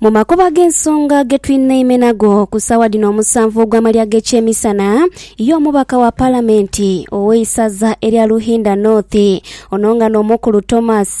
Mu makubo ag'ensonga ge tulina eime nago ku saawa dhino omusanvu ogw'amalya g'ekyemisana ye omubaka wa palamenti ow'eisaza erya Lughinda North ono nga n'omukulu Thomas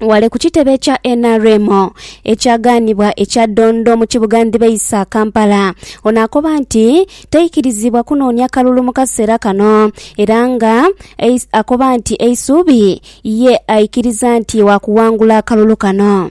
wale ku kitebe kya nrm ekyagaanibwa ekya Dondo mu kibuga Ndhibaisa, Kampala. Ono akoba nti taikirizibwa kunoonia kalulu mu kaseera kano era nga eis- akoba nti eisuubi ye aikiriza nti waakuwangula akalulu kano.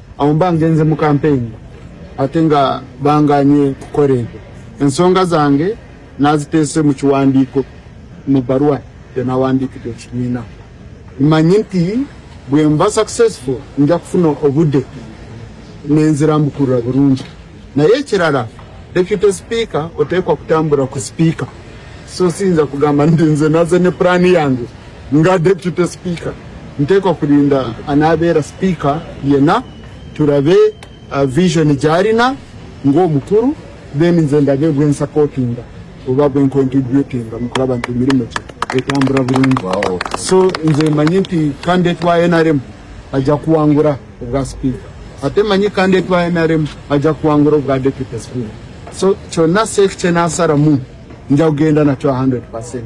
Awo mba ngenze mu kampeyini ate nga bangaanye kukola ebyo. Ensonga zange naziteese mu kiwandiiko mu bbaluwa gye nawandiikidde ekibiina. Mmanyi nti bwe mba successful nja kufuna obudde ne nzirambukulula bulungi. Naye ekirala, Deputy Sipiika oteekwa kutambula ku Sipiika, so siyinza kugamba nti nze naze ne pulaani yange. Nga Deputy Speaker, nteekwa kulinda anaabeera Speaker yena tulabe vision gy'alina ng'omukulu then nze ndabe gwe nsapootinga oba gwe nkontributinga mu kulaba nti emirimo gye etambula bulungi. So nze mmanyi nti candidate wa nrm aja kuwangula obwa Speaker ate mmanyi candidate wa nrm aja kuwangula obwa Deputy Speaker. So kyonna Seif kye naasalamu nja kugenda nakyo a hundred per cent.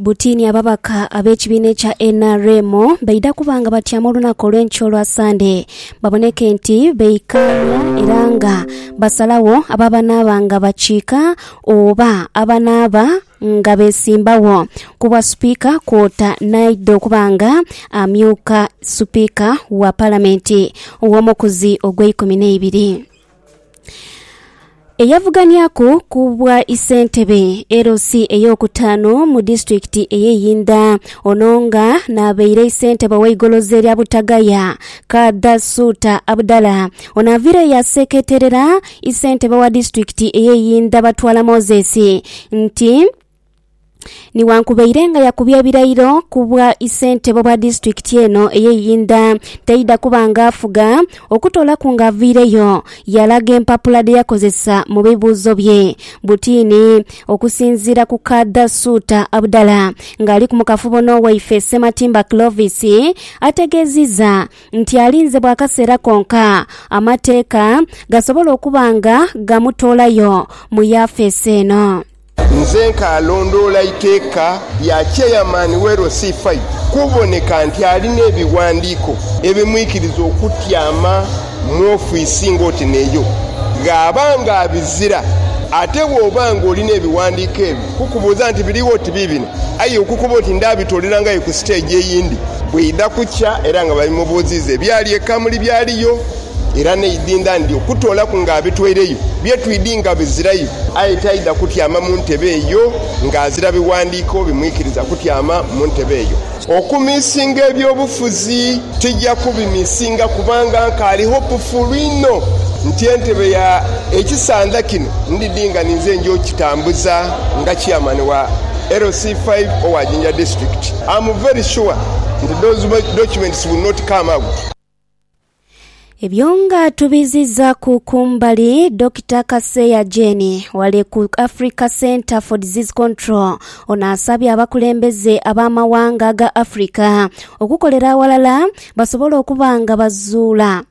Buti ni ababaka ab'ekibiina ekya nrm baidha kuba nga batyama olunaku olw'enkya olwa Sande baboneke nti beikaanya era nga basalagho abo abanaaba nga bakiika oba abanaaba nga besimbagho ku bwa Sipiika kwota n'aidha okuba nga amyuka Sipiika wa Palamenti ow'omukuzi ogw'eikumi n'eibiri. Eyavuganyaku ku bwa isentebe LC ey'okutaanu mu disitulikiti ey'e Yinda ono nga n'abaire isentebe ow'eigoloza erya Butagaya Kadha Suuta Abudala ono avire yaseketerera isentebe wa disitulikiti ey'e Yinda Batwala Moses nti Nighankubaire nga yakubye ebirayiro ku bwa isentebe obwa disitulikiti eno eye Iyinda taidha kuba nga afuga okutoolaku nga avaireyo yalaga empapula dhe yakozesa mu bibuuzo bye butiini okusinziira ku Kadha Suuta Abudala ng'aliku mu kafubo n'owaife Ssematimba Clovis ategeezizza nti alinze bwa kaseera konka amateeka gasobola okuba nga gamutoolayo mu yafeesi eno. Nze nkaalondoola iteeka lya Chairman w'LC Fai kuboneka nti alina ebighandiiko ebimwikiriza okutyama mu ofiisi ng'oti n'eyo gh'aba ng'abizira. Ate bw'oba ng'olina ebighandiiko ebyo kukubuuza nti biri oti biibino, aye okukoba oti ndaabitoolerangayo ku siteegi eyindi bw'eidha kukya era nga babimubuuziiza ebyali e Kamuli byaliyo. era n'eidhindha ndi okutoolaku ng'abitweireyo bye twidhi nga bizirayo. Aye taidha kutyama mu ntebe eyo ng'azira biwandiiko bimwikiriza kutyama mu ntebe eyo. Okumisinga eby'obufuzi tija kubimisinga kubanga nkaali hopufuulu inho nti entebe ya ekisandha kino ndidhi nga ninze nja okukitambuza nga Chairman wa LC five owa Jinja District. Am very sure nti those documents will not come out. Ebyo nga tubizizaku kumbali, Dokita Kaseya Jane wale ku Africa Centre for Disease Control ono asabye abakulembeze ab'amawanga ga Africa okukolera awalala basobole okuba nga bazuula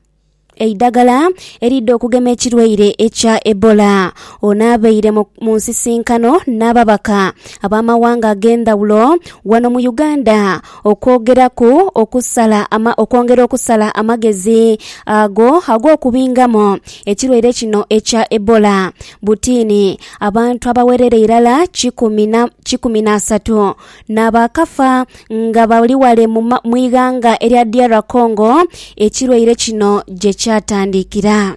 eidagala eridha okugema ekirwaire ekya Ebola. Ono abaire mu mu nsisinkano n'ababaka ab'amawanga ag'endhawulo wano mu Uganda Okwogeraku okusala ama, okwongera okusala amagezi ago ag'okubingamu ekirwaire kino ekya Ebola. Butini, abantu abawerera irala kikumi na, kikumi n'asatu n'abaakafa nga bali wale mu ma, mu ighanga erya DR Congo ekirwaire kino gye kyatandikira.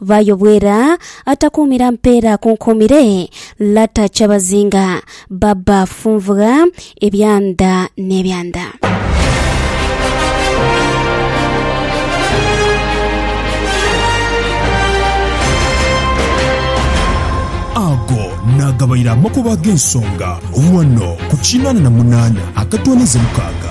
Vaayo Bwera atakuumira mpeera akunkuumire Lata Kyabazinga Baba Funvugha ebyanda n'ebyanda. Ago naagabaire amakubo ag'ensonga ghano ku kinana na munana akatooneza mukaaga.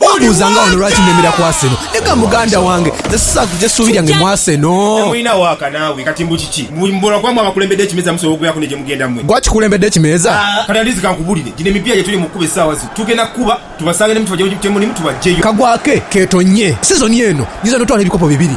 Wambuuza nga wano lwaki nemera ku Arsenal. Nega muganda wange, nze sisaagha kugya ssuubi lyange mu Arsenal. Mwina waaka naawe kati mbu kiki? Mbu mbula kuba mwe abakulembedde ekimeeza musobola okubeeraku ne gye mugenda mwe? Gwe akikulembedde ekimeeza? Kati Andizi kankubulire, gino emipiira gye tuli mu kukuba essaawa zino tugenda kukuba tubasange ne muti bajja gye muti mulimu tubaggyeyo. Kagwa ke keetonnye sizoni eno. Nyinza n'otwala ebikopo bibiri.